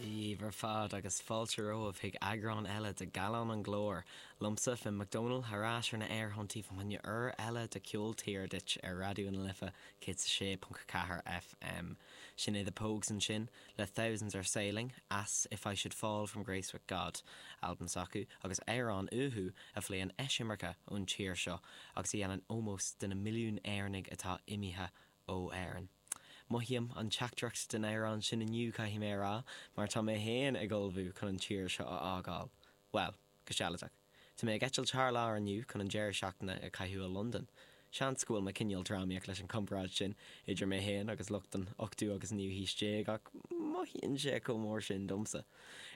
Dia daoibh ar fad agus fáilte romhaibh chuig eagrán eile de 'Gallán an Chláir', liomsa, Finn Mac Dónaill, thar ais ar na aerthonntaí fá choinne uair eile de 'Ceol Tíre' duit ar Raidió na Life 106.4 FM. Sin é The Pogues ansin. le Thousands are sailing, as, If I should fall from grace with God, albam s'acu, agus amhrán uathu a phléann eisimirce ón tír seo agus a dhéanann ómós de na milliún Éireannaigh atá imithe ó Éirinn. Mothaím an teachtaireacht den amhrán sin inniu, caithfidh mé a rá, mar tá mé féin ag ullmhú chun an tír seo a fhágáil. Bhuel. Go sealadach, tá mé ag eitilt thar lear inniu chun an deireadh seachtaine a chaitheamh i Londain. Seans go bhfuil mé cineál drámaíoch leis an gcomparáid sin idir mé féin agus lucht an ochtú agus naoú haois déag ach mothaíonn sé chomh mór sin domsa.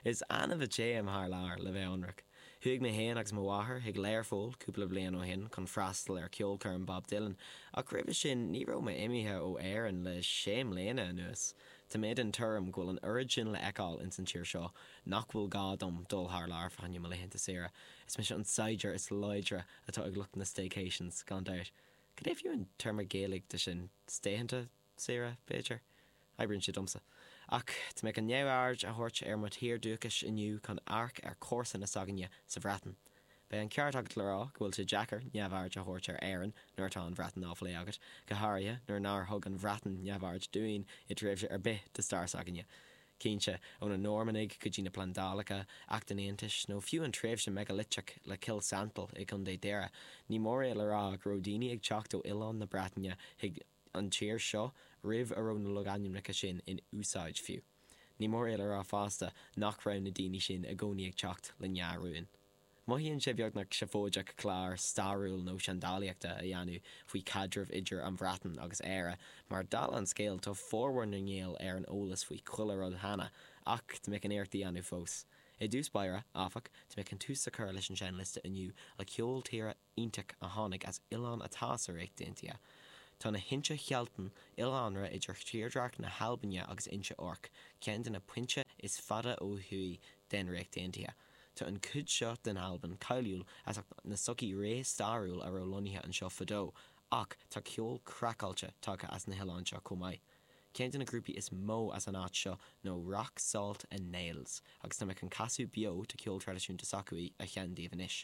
Is annamh a théim thar lear, le bheith ionraic. Chuaigh mé féin agus mo mháthair chuig Learpholl cúpla bliain ó shin chun freastal ar cheolchoirm Bob Dylan ach roimhe sin ní raibh mé imithe ó Éirinn le sé mbliana anuas. Tá mé den tuairim go bhfuil an oiread sin le fheiceáil ins an tír seo nach bhfuil gá dom dul thar lear fá choinne mo laethanta saoire. Is mise an saighdiúir is láidre atá ag lucht na staycations, gan dabht. Cad é a mbeadh an téarma Gaeilge de sin? Stay-thanta saoire, b'fhéidir? Oibríonn sé domsa. Ach tá mé chun neamhaird a thabhairt ar mo thír dúchais inniu chun amharc ar chomharsana s'againne sa Bhreatain. Beidh an ceart agat le rá go bhfuil sé deacair neamhaird a thabhairt ar Éirinn nuair atá an Bhreatain á phlé agat, go háirithe nuair nár thug an Bhreatain neamhaird dúinn i dtréimhse ar bith de stair s'againne. cinnte, ó na Normannaigh go dtí na plandálacha, Acht an Aontais, nó fiú an tréimhse mheigileiteach le Cill Santail i gContae Dhoire, ní mór é le rá go raibh daoine ag teacht ó oileán na Breataine chuig an tír seo roimh a raibh na logainmneacha sin in úsáid fiú. Ní mór é le rá fosta nach raibh na daoine sin i gcónaí ag teacht le ndea-rúin. Mothaíonn sé beagnach seafóideach clár stairiúil nó seandálaíochta a dhéanamh faoi chaidreamh idir an Bhreatain agus Éire mar, dála an scéil, tá formhór na nGael ar an eolas faoi chuile rud cheana, ach tá mé chun iarracht a dhéanamh fós. I dtús báire, áfach, tá mé chun tús a chur leis an seinnliosta inniu le ceol tíre iontach a tháinig as oileán atá sa Ríocht Aontaithe. Tá na hInse Shealtainn, oileánra idir thírdhreach na hAlbaine agus Inse Orc, ceann de na pointe is fada ó thuaidh den Ríocht Aontaithe. Tá an chuid seo den Albain cáiliúil as ucht na sochaí réamhstairiúil a raibh lonnaithe anseo fadó, ach tá ceol craiceáilte tagtha as na hoileáin seo chomh maith. Ceann de na grúpaí is mó as an áit seo ná Rock Salt and Nails, agus tá mé chun casadh beo de cheol traidisiúnta s'acu a sheinm daoibh anois.